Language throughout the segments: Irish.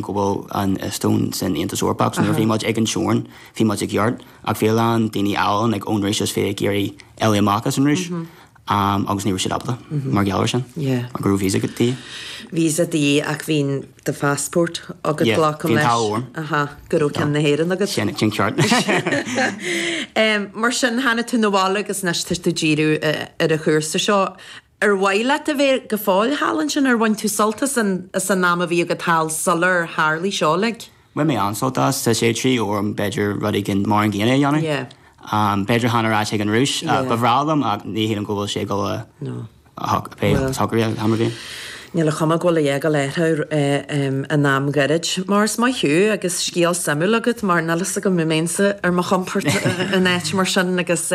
go bhfuil an Eastóin san Aontas Eorpach, so nuair a bhí muid ag an teorainn, bhí muid i gceart, ach bhí a lán daoine eile ann, like, ón Rúis is bhí ag iarraidh éalú amach as an Rúis, agus ní raibh siad ábalta, mar gheall ar sin, mar go raibh visa agat, de dhíth. visa de dhíth ach bhí do phassport agat, glacaim leis. Yeah, bhí an t-ádh orm. Aha, go raibh ceann na hÉireann agat. Sin, sin ceart anois. Mar sin, tháinig tú na bhaile agus anois tá tú ag díriú ar an chúrsa seo. Ar mhaith leat a bheith go fóill thall ansin? Ar bhain tú sult as an am a bhí agat thall sular tharlaigh seo uilig? Bhain mé an-sult as. Tá sé trí uair orm b'fhéidir rud éigin mar an gcéanna a dhéanamh. B'fhéidir chan ar ais chuig an Rúis. Ba bhreá liom ach ní shílim go bhfuil sé ag dul a shocrú am ar bith. Níl a chuma go bhfuil a fhágáil air in am gairid. Mar is maith thú agus scéal suimiúil agat mar níl a fhios agam an mbeinnse ar mo chompord in áit mar sin agus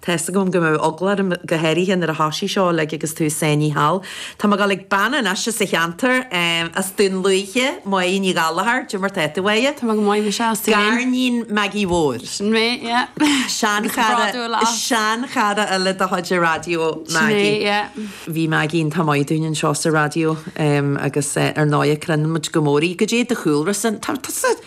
Tá's agam go mbeadh eagla orm, go háirithe nuair a thosaigh seo uilig agus tusa ansin thall. Tá mé ag dul chuig bean anois as an cheantar, as Dún Lúiche, Moya Ní Ghallachair, goidé mar atá tú aie? Tá mé go maith, maise, is tú féin. Gariníon Maggie Mhóir. Sin mé, yeah. Seanchara, seanchara eile de chuid an raidió, Maggie. Sin é, yeah. Bhí Maggie iontach maith dúinn anseo sa raidió, agus ar ndóigh cronaíonn muid go mór í. Goidé do chúlra san? Tá, tá, tá.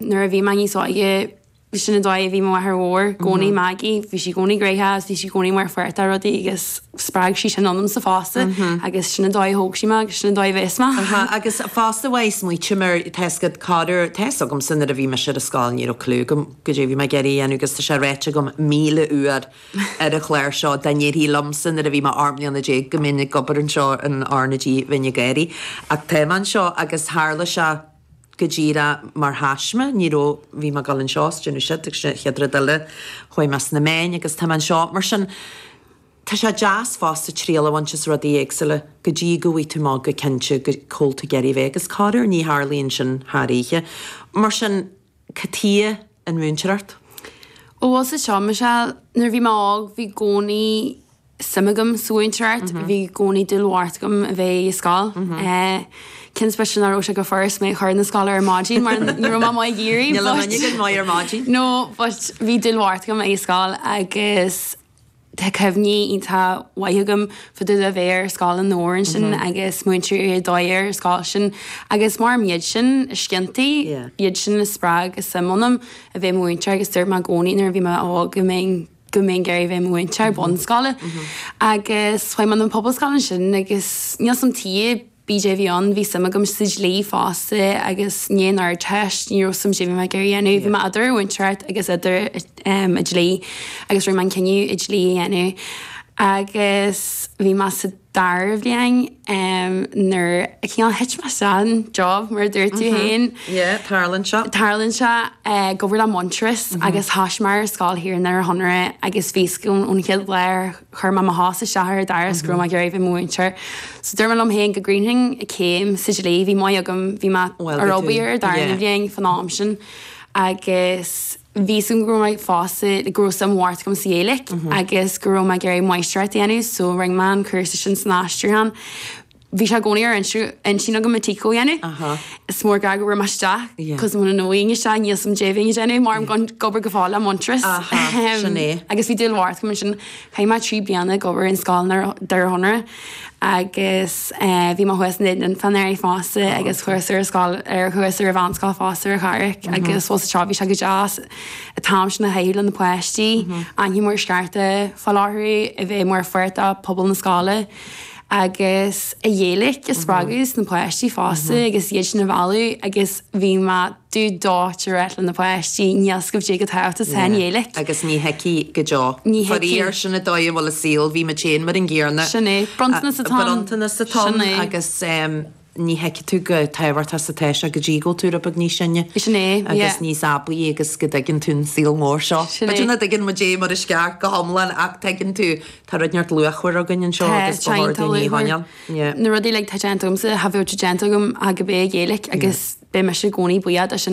Nuair a bhí mé níos óige, sin an dóigh a bhí mo mháthair mhór i gcónaí, Maggie, bhí sí i gcónaí gnoitheach agus bhí sí i gcónaí mar pháirt de rudaí agus spreag sí sin ionamsa fosta agus sin an dóigh a thóg sí mé agus sin an dóigh a bheas mé. Aha, agus fosta bheadh smaoitím ar tá's agat corruair, tá's agamsa nuair a bhí mise ar an scoil, ní raibh cliú agam goidé a bhí mé ag iarraidh a dhéanamh agus tá sé ráite agam míle uair ar an chlár seo, dá ndéarfaí liomsa nuair a bhí mé ocht mbliana déag go mbeinn ag obair anseo in R na G bheinn ag gáirí. Ach tá mé anseo agus tharla sé. go díreach mar thaisme, ní raibh, bhí mé ag dul anseo, is ag déanamh siúd, agus an chéad rud eile, chuaigh mé sna meáin, agus tá mé anseo. Mar sin, tá sé deas fosta triail a bhaint as rudaí éagsúla, go dtí go bhfaighidh tú amach go cinnte go cá bhfuil tú ag iarraidh a bheith, agus corruair, ní tharlaíonn sin thar oíche. Mar sin. Cad chuige an mhúinteoireacht. Ó bhfuil a fhios agat seo Michelle, nuair a bhí mé óg bhí i gcónaí suim agam sa mhúinteoireacht, bhí i gcónaí dúil bhocht agam a bheith i scoil. Cé I suppose nach raibh sé chomh furast mé a chur na scoile ar maidin mar ní raibh mé maith ag éirí but. Níl aon duine againn maith ar maidin. No but bhí dúil bhocht agam i scoil agus. Tá cuimhní iontach mhaith agam fá dtaobh de bheith ar Scoil Adhamhnáin ansin agus múinteoirí ar dóigh ar an scoil sin agus mar am iad sin is cinnte, iad sin a spreag an tsuim ionam a bheith i mo mhúinteoir agus dúirt mé i gcónaí nuair a bhí mé óg go mbeinn go mbeinn ag iarraidh a bheith i mo mhúinteoir bunscoile. Agus chuaigh mé na pobalscoile ansin agus níl a fhios agam taobh bíodh é a bhí ann, bhí suim agam sa dlí fosta agus i ndiaidh an Ardteist, ní raibh a fhios agam caidé a bhí mé ag iarraidh a dhéanamh, bhí mé idir mhúinteoireacht agus idir an dlí agus rinne mé an cinneadh an dlí a dhéanamh agus bhí mé sa dara bhliain nuair a cineál thit mé isteach an job mar a dúirt tú féin, tarlaíonn sé, ag obair le Muintearas agus thoisigh mé ar scoil thiar i nDoire Chonaire agus bhí a fhios agam ón chéad lá ar Chuir mé mo chos isteach ar an doras go raibh mé ag iarraidh a bheith i mo mhúinteoir. So dúirt mé liom féin go gcríochnóinn an chéim sa dlí. Bhí maith agam, bhí mé ag obair ar an darna bliain fan am sin agus bhí a fhios agam go raibh mé fosta, go raibh suim mhór agam sa Ghaeilge agus go raibh mé ag iarraidh máistreacht a dhéanamh so rinne mé an cúrsa sin san aistriúchán. bhí sé i gcónaí ar intinn agam an tsíceól a dhéanamh. Is mór an gar go raibh mé isteach, cos ar ndóigh níl sé níl suim déibh é a dhéanamh, mé ag obair go fóill le Muintearas. Agus bhí dúil mhór agam ann sin, chaith mé trí bliana ag obair ar scoil i nDoire Chonaire, agus bhí mé thuas in Éirinn fan air fosta, agus ar ais ar an scoil, ar ais ar an mheánscoil ar an Fhál Carrach, agus fós anseo bhí sé go deas an t-am sin a shaothrú le na páistí, ainmhí mór scearta fá láthair é, a bheith mar pháirt de phobal na scoile. agus an Ghaeilig a spreagadh sna páistí fosta agus iad sin a mhealladh agus bhí mé dubh dóite á ráit le na páistí, níl a fhios agaibh caidé chomh tábhachtach is atá an Ghaeilig. Agus ní thuigfidh go deo. Ní thuigfidh. Faraor, sin an dóigh a bhfuil an saol, bhí muid féin mar an gcéanna. Sin é, bronntanas atá ann. Bronntanas atá ann agus. ní thuigfidh tú chomh tábhachtach is atá sé go dtí go bhfuil tú beag níos sine. Sin é, yeah. Agus níos aibí agus go dtuigeann tú an saol mór seo. Sin é. B'fhéidir nach dtuigeann muid é mar is ceart go hiomlán ach tuigeann tú, tá rud iontach luachmhar againn anseo Tá, agus tá go háirithe ní luachmhar. hainneoin. Yeah. Na rudaí uilig atá déanta agamsa, cha bheadh sé déanta agam ach gurb é an Ghaeilig agus beidh mise i gcónaí buíoch as sin